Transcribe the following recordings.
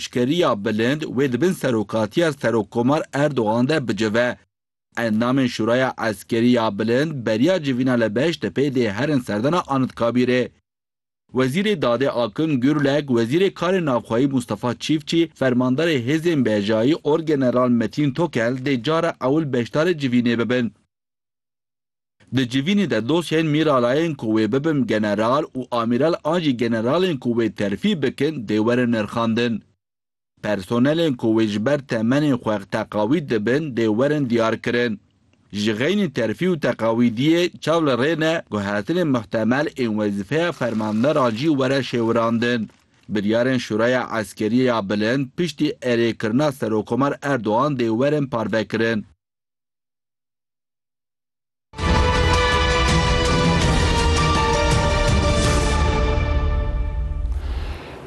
Eşkeriya bilind wê di bin serokatiya Serokkomar Erdogan de bicive. Endamên Şuraya Eskerî ya Bilind beriya civîna li Beştepê dê herin serdana Anitkabîrê. Wezîrê Dadê Akın Gürlek, Wezîrê Karên Navxweyî Mustafa Çîfçî, Fermandarê Hêzên Bejayî Orgeneral Metin Tokel dê cara ewil beşdarê civînê bibin. Di civînê de dosyayên mîralayên ku wê bibin general û amîral an jî generalên ku wê terfî bikin dê werin nirxandin. Personelên ku wê ji ber temenê xwe teqawîd dibin dê werin diyarkirin. Ji xeynî terfî û teqawîdiyê çav li rê ne guhertinên muhtemel ên wezîfeya fermanderan jî were şêwirandin. Biryarên Şuraya Eskerî ya Bilind piştî erêkirina Serokomar Erdogan dê werin parvekirin.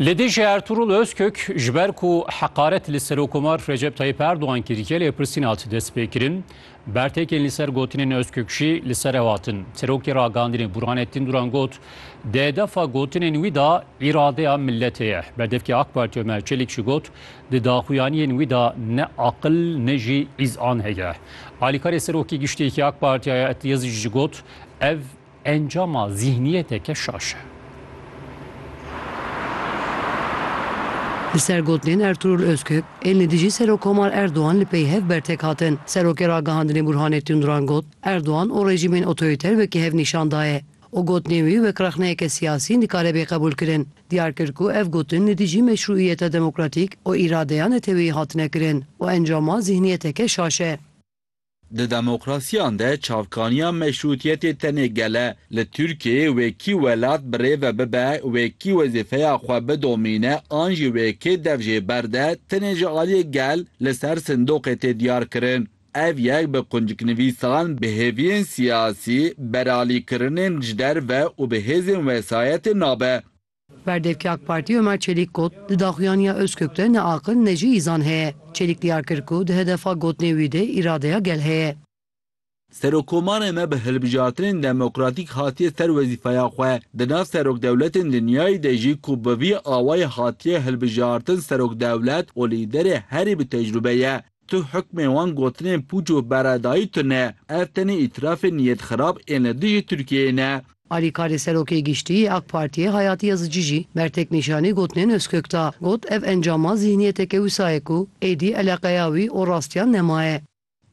Li dijî Ertuğrul Özkök ji ber ku heqaret li Serokomar Recep Tayyip Erdoğan kiriye lêpirsîn hat destpêkirin. Bertêkên li ser gotinên Özkök jî li ser ew hatin. Serokê Ragihandinê Burhanettin Duran got, Di hedefa gotinên wî de îradeya miletê ye. Berdevkê AK Partî Ömer Çelik jî got, Di daxuyaniyên wî de ne aqil ne jî îzan heye. Alîkarê Serokê Giştî yê AK Partiya ya Etiez jî got, Ev encama zîhniyeteke şaş e. Li ser gotinên Ertûrûl Ozkök, ên li dijî Serokkomar Erdogan li pey hev bertek hatin. Serokê Ragihandinê Bûrhanê Tûnduran got, Erdogan û rejîmên otorîter wekî hev nîşan daye. û gotinên wî wek rexneyeke siyasî nikare bê qebûlkirin. Diyar kir ku ev gotin li dijî meşrûîyeta demokratîk û îradeya neteweyî hatine kirin û encama zîhniyeteke şaş e. Di demokrasiyan de çavkaniya meşrûtiyetê tenê gel e. Li Tirkiyeyê wê kî welat bi rê ve bibe, wê kî wezîfeya xwe bidomîne an jî wê kê dev jê berde tenê ji aliyê gel li ser sindoqê tê diyarkirin. Ev yek bi qunciknivîsan, bi hêviyên siyasî, beralîkirinên ji derve û bi hêzên wesayetê nabe. Berdevkê AK Partî Omer Çelîk got, Di daxuyaniya Ozkök de ne aqil ne jî îzan heye. Çelîk diyar kir ku di hedefa gotinê wî de îradeya gel heye. Serokkomarê me bi hilbijartinên demokratîk hatiye ser wezîfeya xwe. Di nav serokdewletên dinyayê de jî ku bi vî awayî hatiye hilbijartin serokdewlet û lîderê herî bi tecrûbe ye. Tu hukmê wan gotinên pûç û beredayî tune. Ev tenê îtirafê niyet xirab ên li dijî Tirkiyeyê ne. Alîkarê Serokê Giştî yê AK Partiyê Hayati Yazıcı jî bertek nîşanî gotinên Ozkök da. Got, Ev encama zîhniyeteke wisa ye ku êdî eleqeya wî û rastiyan nemaye.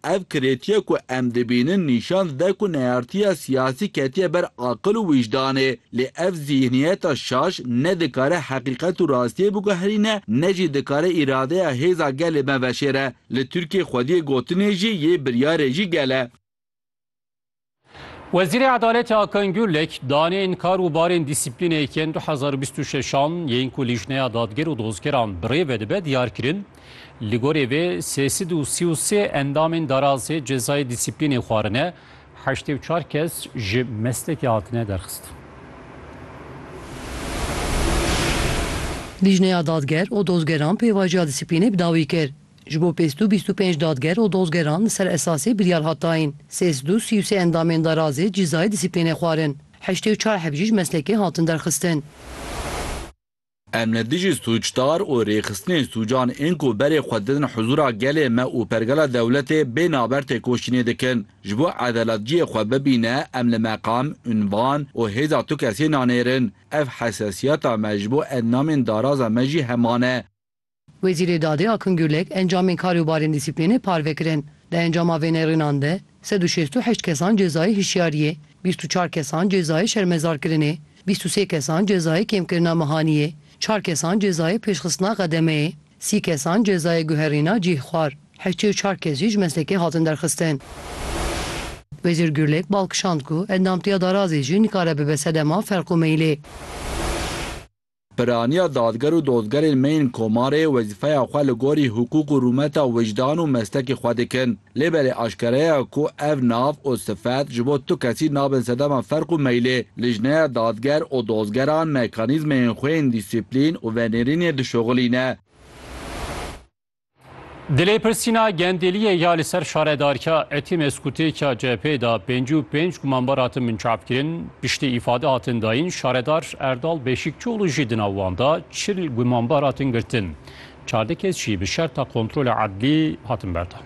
Ev kirêtiya ku em dibînin nîşan dide ku neyartiya siyasî ketiye ber aqil û wîjdanê. Lê ev zîhniyeta şaş ne dikare heqîqet û rastiyê biguherîne ne jî dikare îradeya hêza gelê me veşêre. Li Tirkiyê xwediyê gotinê jî yê biryarê jî gel e. Wezîrê Edaletê Akın Gürlek, daneyên kar û barên dîsîplînê yê yên du hezar û bîst û şeş an yên ku Lîjneya Dadger û Dozgeran bi rê ve dibe diyar kirin. Li gorî vê sê sed û sî û sê endamên DARAS'ê cezayê dîsîplînê xwarine Heştê û çar kes ji meslekê hatine derxistin. Lîjneya Dadger û Dozgeran pêvajiya dîsîplînê bi dawî kir. Ji bo pêz dû bîst û pênc dadger û dozgeran li ser esasê biryar hat dayîn. Sê sed û sî û sê endamên darazê cîzayê dîsîplînê xwarin. Heştê û çar heb jî ji meslekê hatin derxistin. Em li dijî sûcdar û rêxistinên sûcan ên ku berê xwe didin huzûra gelê me û pergala dewletê bê naber têkoşînê dikin. Ji bo edalet cihê xwe bibîne em li meqam, unvan û hêza tu kesê nanêrin. Ev hesasiyeta me ji bo endamên daraza me jî heman e. Wezîrê Dadê Akın Gürlek encamên karê û barên dîsîplînê parve kirin. Di encama vê nêrînan de sed û şêst û heşt kesan cezayê hişyariyê, bîst û çar kesan cezayê şermezarkirinê, bîst û sê kesan cezayê kêmkirina mehaniyê, çar kesan cezayê pêşxistina xedemeyê, sî kesan cezayê guherîna cih xwar, heştê û çar kes jî ji meslekê hatin derxistin. Wezîr Gürlek bal kişand ku endamtiya darazê jî nikare bibe sedema ferq û meylê. Piraniya dadger û dozgerên me yên komarê wezîfeya xwe li gorî hiqûq û rûmeta wijdan û mestekê xwe dikin. Lê belê aşkere ye ku ev nav û sifet ji bo tu kesî nabin sedema ferq û meylê. Lijneya dadger û dozgeran mekanîzmeyên xwe yên dîsîplîn û venêrînê dişuxilîne. Di lêpirsîna gendeliyê ya li ser şaredarka Etimeskûtêka CHP'ê da pêncî û pênc gumanbar hatin binçavkirin, piştî îfade hatin dayîn, şaredar Erdal Beşîkçioğlu jî di nav wan da çil gumanbar hatin girtin. Çardeh kes jî bi şerta kontrola edlî hatin berdan.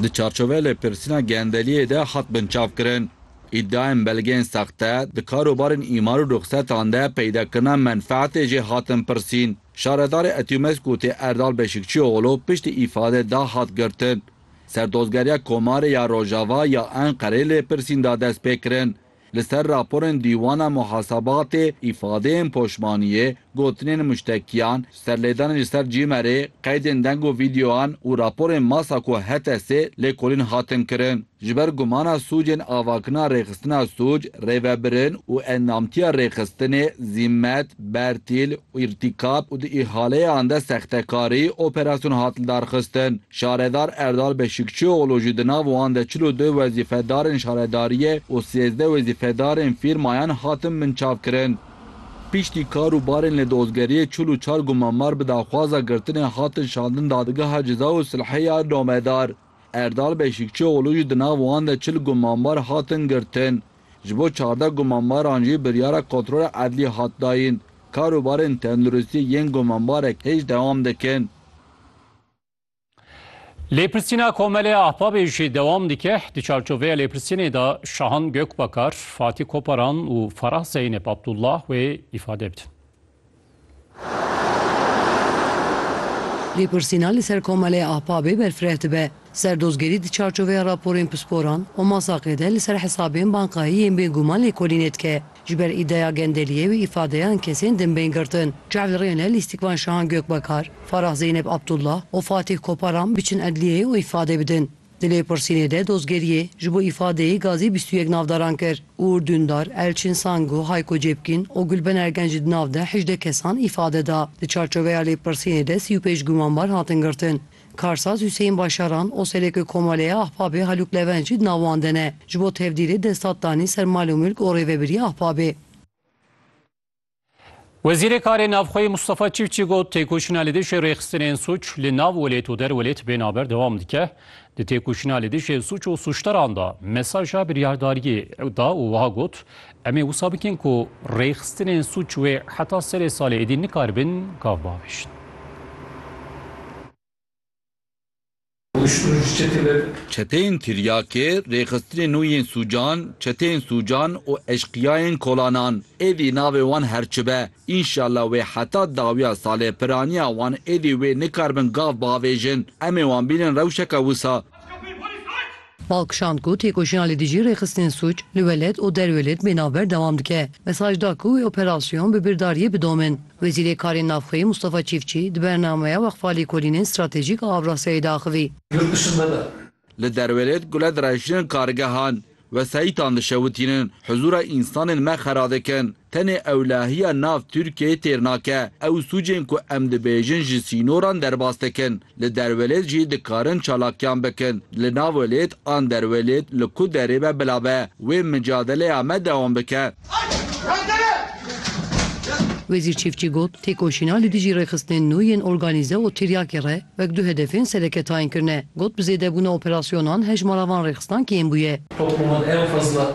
Di çarçoveya lêpirsîna gendeliyê de hat binçavkirin. Îdiayên belgeyên saxte, di karobarên îmar û ruxsetan de peydakirina menfeetê jê hatin pirsîn. Şaredarê Etyûmeskûtê Erdal Beşikçioğlu piştî îfade da hat girtin. Serdozgeriya Komarê ya Rojava ya Enqerê lêpirsîn da dest pê kirin. Li ser raporên Dîwana Muhasebatê, îfadeyên poşmaniyê Gotinên muştekiyan, serlêdanên ji ser cîmerê, qeydên deng û vîdeoyan û raporên masa ku HTSê lêkolîn hatin kirin. Ji ber gumana sûcên avakirina rêxistina sûc, rêvebirin û endamtiya rêxistinê, zîmet, bertîl û îrtîkab û di îhaleyan de sextekarî, operasyon hat lidarxistin. Şaredar Erdal Beşîkçioğlu jî di nav wan de çil û du wezîfedarên şaredariyê û sêzdeh wezîfedarên fîrmayan hatin binçavkirin. Piştî kar û barên li dozgeriyê çil û çar gumanbar bi daxwaza girtinê hatin şandin Dadgeha Ceza û Silhê ya Namedar. Erdal Beşîkçioğlu jî di nav wan de çil gumanbar hatin girtin. Ji bo çardeh gumanbaran jî biryara kontrola edlî hat dayîn. Kar û barên tenduristiyê yên gumanbarek hêj dewam dikin. Lêpirsîna Komelê Ahbabê jî dewam dike. Di çarçoveya lêpirsînê de Şahan Gökbakar, Fatî Koparan û Farah Zeynep Abdullah wê îfade bidin. Lêpirsîna li ser Komelê Ahbabê berfireh dibe. Serdozgerî di çarçoveya raporên pisporan û masaqê de li ser hesabên bankayî yên bêguman lêkolînê dike. Ji ber îdeya gendeliyê wî îfadeyan kesên din bên girtin. Çavdêrên li Lîstikvan Şahan Gökbakar, Farah Zeynep Abdullah û Fatîh Koparan biçin edliyeyê û îfade bidin. Di lêpirsînê de dozgeriyê ji bo îfadeyê gazê bîst û yek navdaran kir û Uğur Dündar, Elçin Sangu, Hayko Cepkin û Gulben Ergen jî di nav de hejdeh kesan îfade da. Di çarçoveya lêpirsînê de sî û pênc gumanbar hatin girtin. Karsaz Huseyîn Başaran, Oselekê Komaleya Ahbabê Halûk Levenc jî di nav wan de ne. Ji bo tevdîrê destat danî ser mal û milk û rêvebirîya Ahbabê. Wezîrê Karê Navxweyî Mustafa Çîfçî got, Têkoşîna li dijî rêxistinên suç li nav welêt û der welêt bê naber dewam dike. Di têkoşîna li dijî suç û suçdaran de mesaja biryardariyê da û wiha got, Em ê wisa bikin ku rêxistinên sûc wê heta serê salê êdî nikaribin gav biavêjin. Çeteyên tiryakê, rêxistinên nû yên sûcan, çeteyên sûcan û eşqiyayên kolanan. Êdî navê wan her çi be, înşallah wê heta dawiya salê piraniya wan êdî wê nikaribin gav biavêjin. Em ê wan bînin rewşeke wisa. Bal kişand ku têkoşîna li dijî rêxistinên sûc li welêt û derwê lêd bê navber dewam dike. Mesaj da ku wê operasyon bi birdariyê bidomin. Wezîrê Karên Navxweyî Mustafa Çîfçî di bernameya Weqfa Lêkolînên Stratejîk a Avrasyayê de axivî. Li derwê lêd gule direhişînin kargehan, wesayîtan dişewitînin, huzûra însanên me xera dikin. Tenê ewlehiya nav Tirkiyeyê têr nake. Ew sûcên ku em dibêjin ji sînoran derbas dikin. Li derwelêt jî dikarin çalakiyan bikin. Li navwelêt an derwelêt li ku derê be bila be. Wê micadeleya me dewam bike. Wezîr Çiftçî got, Têkoşîna li dijî rêxistinên nû yên organîze û tiryakê re wek du hedefên sereke tayin kirine. Got, bi zêdebûna operasyonan hejmara van rêxistankiyên bûye. Topluma en fazla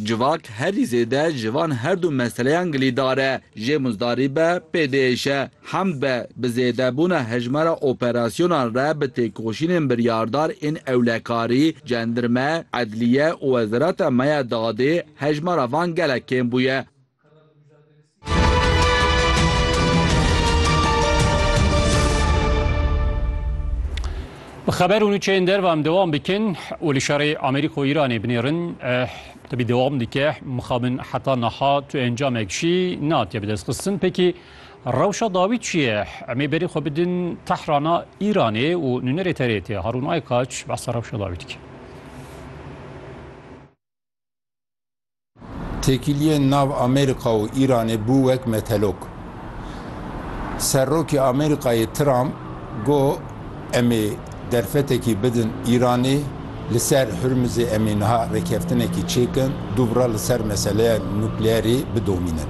Civak herî zêde ji van her du meseleyan gilîdar e, jê muzdarî be, pêdêş e, hemd be, bi zêdebûna hejmara operasyonan re bi têkoşînên biryardar ên ewlekarî, cendirme, edliye û wezareta me ya dadê, hejmara van gelek kêm bûye. Bi xeber û nûçeyên derve em dewam dikin û li şerê Amerîka û Îranê binêrin. Tibî dewam dike mixabin heta niha tu encamek jî nehatiye bidestxistin. Pekî rewşa dawî çi ye? Em ê berî xwe bidin Tehrana Îranê û nûnerê TRT Harûn Aykaç behsa rewşa dawî dike. Têkiliyên nav Amerîka û Îranê bû wek metelok. Serokê Amerîkayê Trump got, Em ê derfetekî bidin Îranê, li ser Hurmizê em ê niha rêkeftinekî çêkin, dubra li ser meseleya nukleerê bidomînin.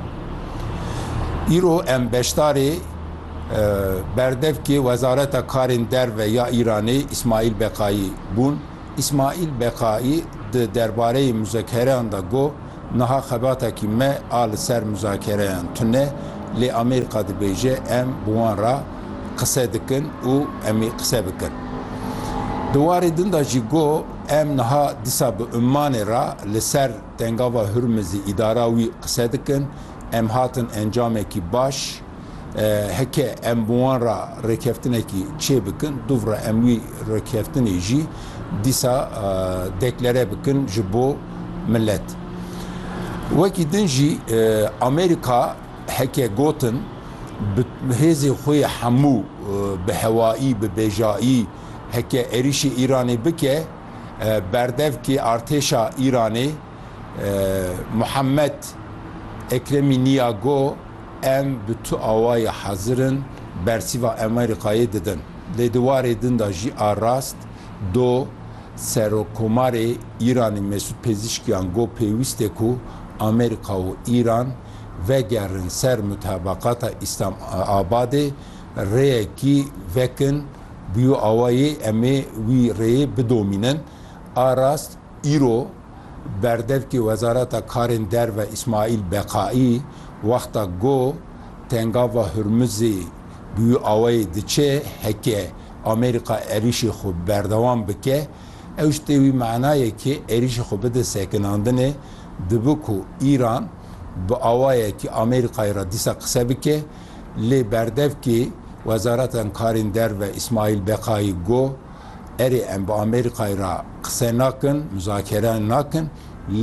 Îro em beşdarê berdevkê Wezareta Karên Derve ya Îranê Îsmaîl Beqayî bûn. Îsmaîl Beqaî di derbareyê muzekereyan de got, Niha xebatekî me a li ser muzakereyan tune, lê Amerîka dibêje em bi wan re qise dikin û em ê qise bikin. Di warê din de jî got, Em niha disa bi Ummanê re li ser Tengava Hurmizê îdara wî qise dikin, em hatin encamekî baş, Heke em bi wan re rêkeftinekî çê bikin, duvre em wî rêkeftinê jî dîsa deklere bikin ji bo milet. Wekî din jî Amerîka heke gotin bi hêzê xwe yê hemû bi hewayî, bi bêjayî heke êrîşê Îranê bike, berdevkê artêşa Îranê Muhammed Ekremî Nîyago, Em bi tu awayî hezir in bersîva Amerîkayê didin. Lê di warê din de jî a rast do Serokkomarê Îranê Mesûd Pêzîşkîyan got pêwîst e ku Amerîka û Îran vegerin ser mutebeqata Îslamabadê rêyekî vekin bûyo awayê em ê wî rêyê bidomînin. A rast îro Berdevkê Wezareta Karên Derve Îsmaîl Beqaî wexta got Tengava Hurmizê bi wî awayê diçe heke Amerîka êrîşê xwe berdewam bike ew ji tê wî mana ye ke êrîşê xwe bide sekinandinê dibe ku Îran bi awayekî Amerîkayê re dîsa qise bike lê berdevkê Wezareta Karên Derve Îsmaîl Beqaî got Erê em bi Amerîkayê re qise nakin, muzakere nakin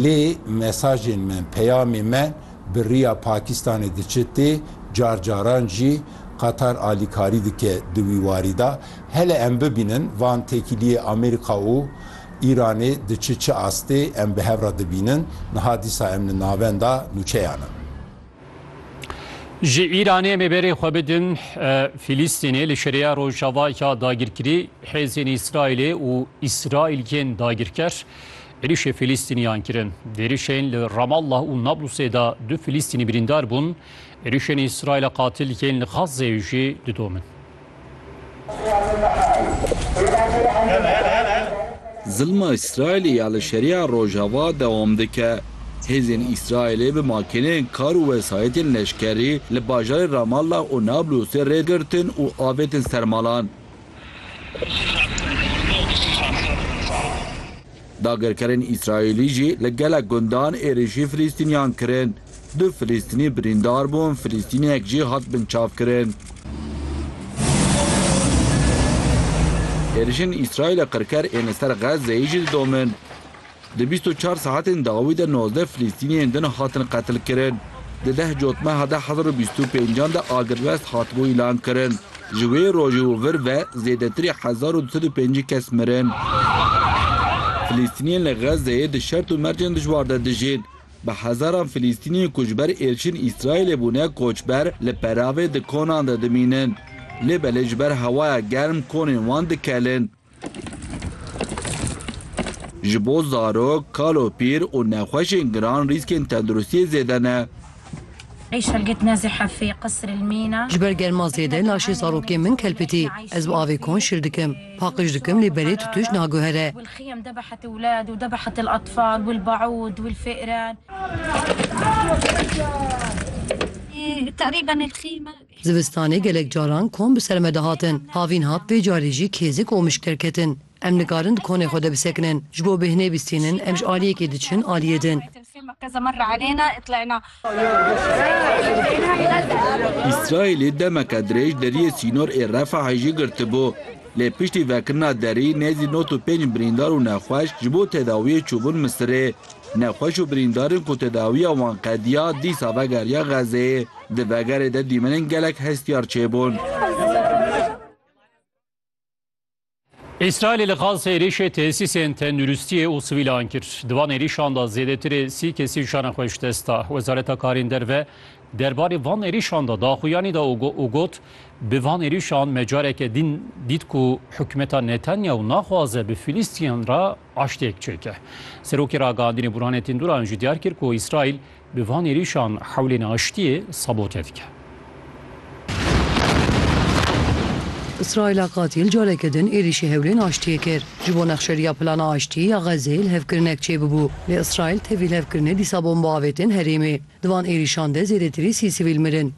lê mesajên me, peyamê me bi riya Pakîstanê diçe tê, car caran jî Qatar alîkarî dike di wî warî de. Hele em bibînin van têkiliyê Amerîka û Îranê diçe çi astê em bi hev re dibînin. Niha dîsa em li navenda nûçeyan in. Ji Îranê me berê xwe bidin Fîlîstînê li şerêya Rojava ya dagirkirî hêzên Îsraîlê û Îsraîliyên dagirker êrişê Fîlîstîniyan kirin. Di êrişên li Ramallah û Nablusê de du Fîlîstînî birîndar bûn. Êrişên Îsraîla qatil yên li Xazzeyê jî didomin. Zilma Îsraîlê ya li Şeriya Rojava dewam dike. Hêzên Îsraîlê bi makîneyên kar û wesayîtên leşkerî li bajarên Ramallah û Nablûsê rê girtin û avêtin ser malan. Dagirkerên Îsraîlî jî li gelek gundan êrîşî Filîstîniyan kirin. Du Filîstînî birîndar bûn, Filîstîniyek jî hat binçavkirin. Êrîşên Îsraîlê qirker ên li ser Xezzeyê jî didomin. Di bîst û çar saetên dawî de nozdeh Filîstîniyên din hatin qetilkirin. Di deh cotmeha deh hezar û bîst û pêncan de agirvest hatibû îlankirin. Ji wê rojê û vir ve zêdetirî hezar û du sed û pêncî kes mirin. Filîstîniyên li Xezzeyê di şert û mercên dijwar de dijîn. Bi hezaran Filîstîniyên ku ji ber êrişên Îsraîlê bûne koçber li peravê di konan de dimînin. Lê belê ji ber hewaya germ konên wan dikelin. Ji bo zarok, kalopîr û nexweşên giran rîskên tenduristiyê zêde ne. Ji ber germa zêde laşê zarokên min kelpitî. Ez bi avê kon şil dikim. Paqij dikim lê berê tutuş naguhere. Zivistanê gelek caran kon bi ser me dihatin. Havîn hat vê carî jî kêzik û mişk derketin. Em nikarin di konê xwe de bisekinin. Ji bo bêhnê bîstînin em ji aliyekê diçin aliyê din. Îsraîlê demeke dirêj deriyê sînor ê Refahê jî girtibû. Lê piştî vekirina derî nêzî nod û pênc birîndar û nexweş ji bo tedawiyê çûbûn Misirê. Nexweş û birîndarên ku tedawiya wan qediya dîsa vegeriya Xezeyê. Di vegerê de dîmenên gelek hestiyar çêbûn. Îsraîlê li Gaza êrîşê tesîsên tenduristiyê û sivîlan kir. Di van êrîşan de zêdetirê sî kesî jiyana xwe ji dest da. Wezareta Karên Derve derbarê van êrîşan de daxuyanî da û got, Bi van êrîşan me careke din dît ku hikûmeta Netanyahu naxwaze bi Filîstîniyan re aştiyek çêke. Serokê ragihandinê Burhane Tînduran jî diyar kir ku Îsraîl Bi van êrîşan hewlên aştiyê sabote dike. Îsraîla qatîl careke din êrîşî hewlên aştiyê kir. Ji bo nexşeriya plana aştiyê ya Xezzeyê lihevkirinek çêbibû, lê Îsraîl tê vî lihevkirinê dîsa bombe avêtin herêmê. Di van êrîşan de zêdetirî sî sivîl mirin.